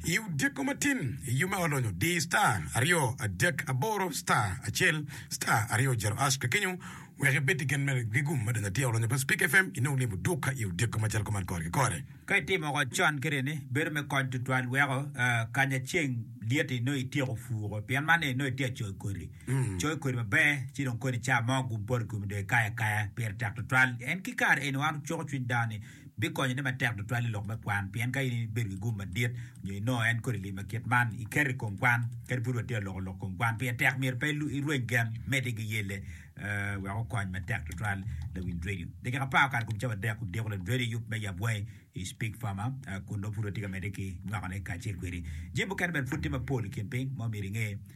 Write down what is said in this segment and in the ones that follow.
I odiko matin, i yub ma olonyo, di star aryo adek aboro star acel star aryo jero hash kakenyo wek ibed ki gen mere ki gum ma donyo atir olonyo pa Speak FM inong limo duka i odiko macalo kuman kore ki kore. Ka itimo woko con kene ni, bedo me kony tutwal weko kanya ceng lyet-ti inongo ityeko puko pien man ni inongo itye ka coyo kodi. Coyo kodi maber ci dong koni ca mo gum poto i komi dong ikayo akaya pire tek tutwal. En ki kare eni wan wucuko cwiny dano ni, bikonyone matek tutwal i lok me kwan pien ka in ibedo ki gum madit nyo inongo en kodi limi kit man, iketo i kom kwan kadi pud watye ka loko lok kom kwan. Pire tek myero pe irweny gen, medde ki yelle wek okony matek tutwal lawiny redio. Dakika apar okato i kom cawa adek odiko lawiny redio yub me yab wangi i Speke Farmer kun nongo pud watye ka medde ki nywakone kacel kwedi. Jami mukene bene pud tye mapol i kin piny ma omyero inge.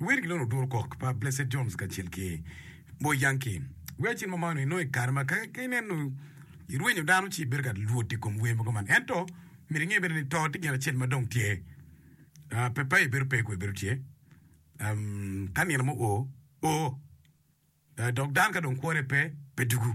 Wer ki loro oduro kok pa Blessed Jones kacel ki Boy Yankee. Wer cen ma mano inongo i kare ma ka ineno irwenyo dano ci ibedo ka lwot i kom wer mogo man. Ento myero inge bene ni to tye gin acel ma dong tye. Ah, pe, pe, ibedo pe, kwe bedo tye. Um, ka nino mo o, o. Ah, dok dano ka dong kwore pe, pe dugu.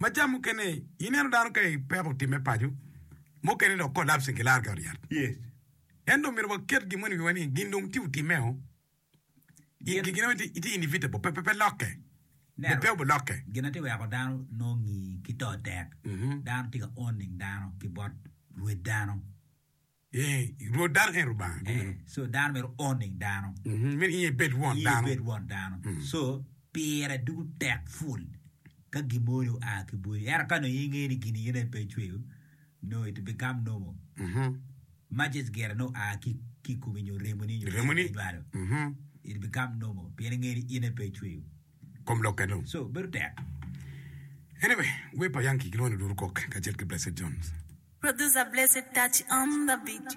Maca mukene ineno dano ka i peko timme paco, mukene dok collapsing ki lar ki ot yat. Ento omyero waket gin moni i wiwa ni gin dong tye otimmeo. Gin gin meno tye inevitable, pe pe pe lokke. Pe pe obi lokke. Gin atye weko dano nongo ngi ki to tek, dano tye ka owning dano ki bot rwed dano. Rwot dano en Lubanga. Ee, so dano myero oning dano. Myero iye bed won dano. Iye bed won dano. So pire ducu tek ful ka gin mo ni oa ki bwodi. Ento ka nongo inge ni gin iyena en pe ecweyo, no it become normal. Majes gire ni oa ki ki komi nyo remoni nyo remoni nywalo. It become normal pien inge ni in en pe ecweyo. kom lok eno. So bedo tek. Anyway, wer pa Yankee kilwongo ni Oduro Kok kacel ki Blessed Jones. Producer Blessed Touch on the beat.